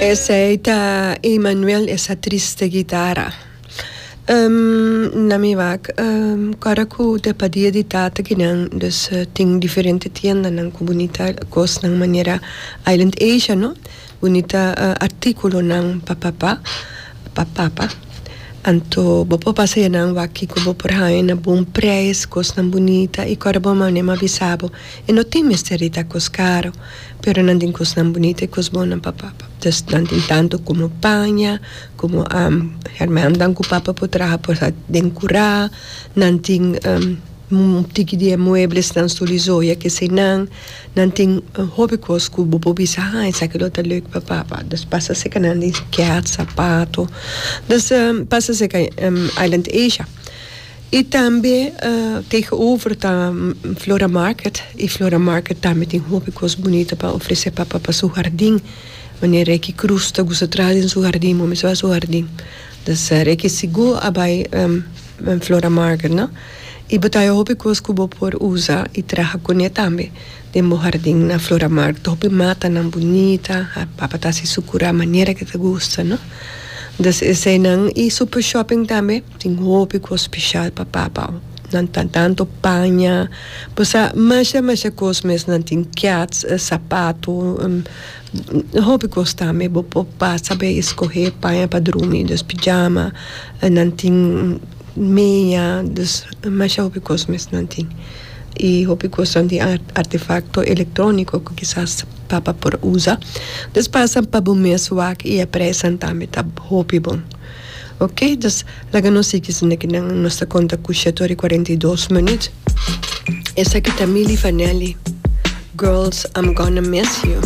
Esey ta Emmanuel esa triste gitara na mi wak ora ku ta pa dia di tata ki nan dus tin diferente tiendanan ku bunita kosnan manera Island Asia no bunita artikulonan pa papa pa papa anto bo por pasa e nan waki ku bo por haña na bon prais kosnan bunita i ora bo mane mi a bisa bo e no tin mester di ta kos karo. Pero nan tin cosnan bunita y cos bonnan pa papa. Tus nan tin tanto como paña, como hermannan cu papa por traha por sa den cura, nan tin un tiki di e mueblesnan sul y zoya cu esey nan, nan tin hopi cos cu bo por bisa ha esaki lo ta leuk pa papa. Dus pasa seca nan di cat, sapato, dus pasa seca Island Asia. Y tambe tegenover ta Flora Market y Flora Market tambe tin hopi cos bunita pa ofrece pa pa su hardin manera Ricky Cruz ta gusta traha den su hardin bo mester bay su hardin dus Ricky segur a bay Flora Market no y bo ta hayo hopi cos cu bo por usa y traha cune tambe Den bo hardin na Floramar topi matanan bunita, a papa ta si su kura manera ke ta gusta, no. Des eseinan i Super Shopping tambe tin hopi kos speshal pa papa. Nan ta tanto paña, bosa masha masha kos mes, nan tin kiats, sapato, hopi kos tambe bo por pasa bai e skohe paña pa drumi, des pijama, nan tin meña, des masha hopi kos mes nan tin. y hopi cosnan tin artefacto electronico cu kisas papá por usa dus pasan pa bo mes wak y e presan tambe ta hopi bon ok dus laga nos sigi esnan aki nan nos ta conta cu shet ora y cuarenta y dos minuut esaki ta Milly Vanelli girls I'm gonna miss you.